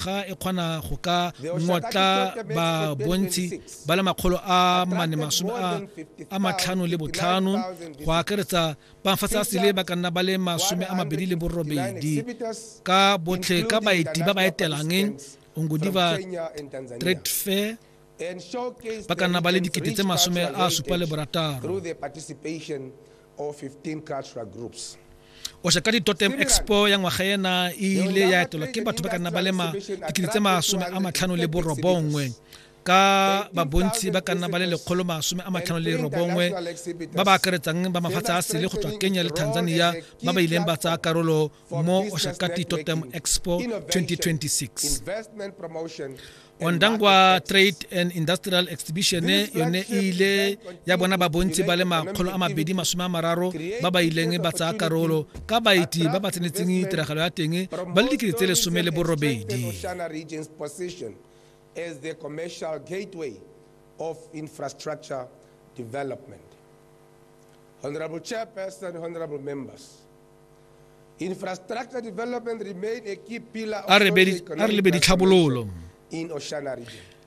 ga e kgona go ka ngotla babontsi ba le makgolo a mane masome a matlhano le botlhano go akaretsa bafatsa sele ba ka nna ba le masome a mabedi le borobedi ka botlhe ka baeti ba ba etelang ongodiva trade fair ba ka nna ba le dikete tse masome a supa le borataro or 15 cultural groups. o shaka ditotem expo ya ngwaga ena e ile ya etelwa ke batho ba ka nna ba le dikete tse masome a matlhano le borobongwe ka babontsi ba ka nna ba le lekgolo masome a matlhano le robongwe ba ba akaretsang ba mafatshe a sele go tswa kenya le tanzania ba ba ileng ba tsaya karolo mo oshakati totem expo 2026 ondangwa trade and industrial exhibition yone e ile ya bona babontsi ba le makgolo a mabedi masome a mararo ba ba ileng ba tsaya karolo ka baeti ba ba tsenetseng tiragalo ya teng ba le dikete tse lesome le borobedi as the commercial gateway of infrastructure development. Honorable Chairperson, honorable members, a re lebe ditlhabololo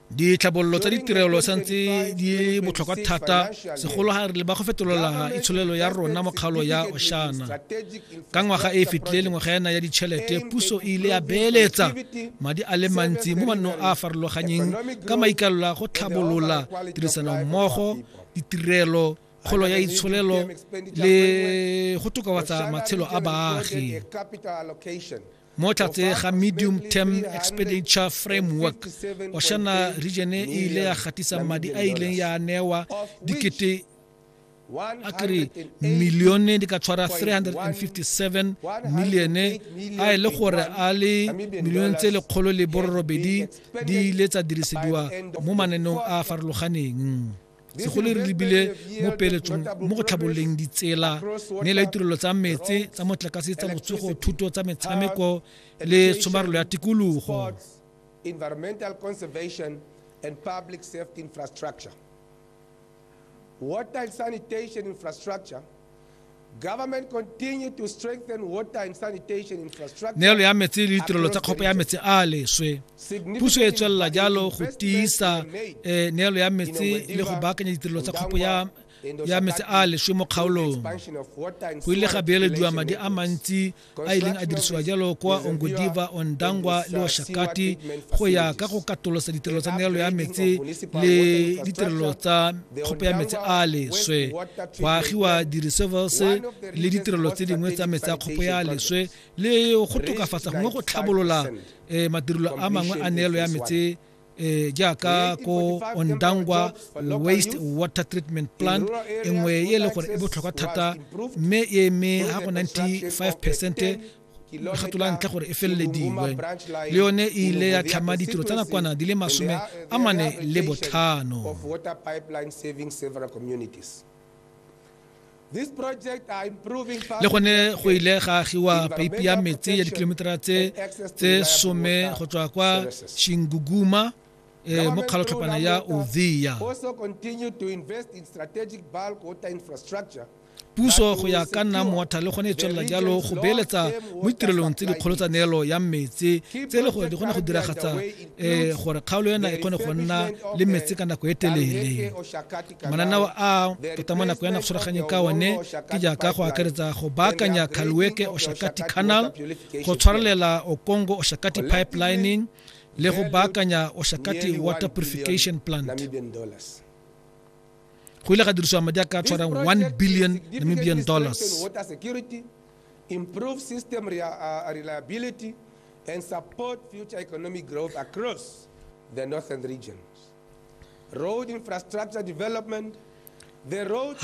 ditlhabololo tsa ditirelo santse di botlhokwa thata segolo ga re le ba go fetolola itsholelo ya rona mokgalo ya oshana ka ngwaga e e fetileng ngwaga yana ya ditšhelete puso e ile ya beeletsa madi a le mantsi mo mannong a a farologanyeng ka maikalelo a go tlhabolola tirisanommogo ditirelo kgolo ya itsholelo le go tokafatsa matshelo a baagi mo tlatse ga medium term expenditure framework oshana region e ile ya gatisa madi a ileng ya newa dikete a kere milione di ka tshwara 357 milione a e le gore a le milione tse lekgolo le borobedi di ile tsa dirisediwa mo mananeng a farologaneng segole re lebile mo peeletsong mo go tlhabololeng ditsela ne la ditirelo tsa metse tsa motlakase tsa botsogo thuto tsa metshameko le tshomarelo ya tikologo environmental conservation and public safety infrastructure water sanitation infrastructure neelo ya metsi le ditirelo tsa kgopo ya metsi a leswe puso e tswelela jalo go tiisa eh, neelo ya metsi le go baakanya ditirelo tsa kgopo ya ya metsi a leswe mo kgaolong go ile ga beelediwa madi a mantsi a ileng a dirisiwa jalo kwa ongodiva ondangwa le oshakati go ya ka go katolosa ditirelo tsa meralo ya metsi le ditirelo tsa kgopo ya metsi a leswe go agiwa di-reservers le ditirelo tse dingwe tsa metsi a kgopo ya leswe le go tokafatsa gongwe go tlhabolola um madirelo a mangwe a neelo ya metsi e jaaka ko ondangwa waste water treatment plant e nngwe e e leng gore e botlhokwa thata mme e eme ga go 95 percent lekgato la ntlha gore e felelediwe le yone e ile ya tlhama ditiro tsa nakwana di le masome a mane le botlhano le gone go ile ga agiwa peipi ya metsi ya dikilometera tse tse some go tswa kwa shinguguma e eh, mo kgalotlhopana ya ovia puso go ya ka nna moatha le gone e tswelela jalo go beeletsa mo ditirelong tse dikgolo tsa neelo ya metsi tse e le gore di kgone go diragatsa um gore kgaolo ena e kgone go nna le metsi ka nako e telele manana wa a tota mo nako ya nagoswaraganyeng ka one ke jaaka go akaretsa go baakanya khalweke oshakati canal go tshwarelela okongo oshakati pipelining le go baakanya oshakati water purification plant go ile ga dirisiwa madi a ka tshwarang 1 billion namibian dollars improve system uh, reliability and support future economic growth across the northern regions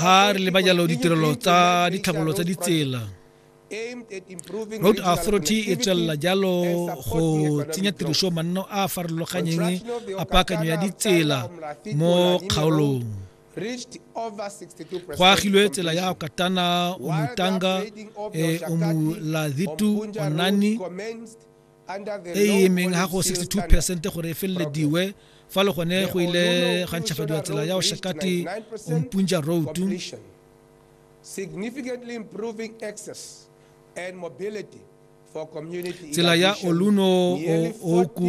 ha re leba jalo ditirelo tsa ditlhabololo tsa ditsela road authority e tswelela jalo go tsenya tiriso manno a a farologanyeng a paakanyo ya ditsela mo kgaolong go agilwe tsela ya katana umutanga eh, umulazitu onani e e emeng ga go 62 percent gore e felelediwe fa le gone go ile ga ntšhafadiwa tsela ya oshakati ompunja road significantly improving access and mobility tsela ya oluno oku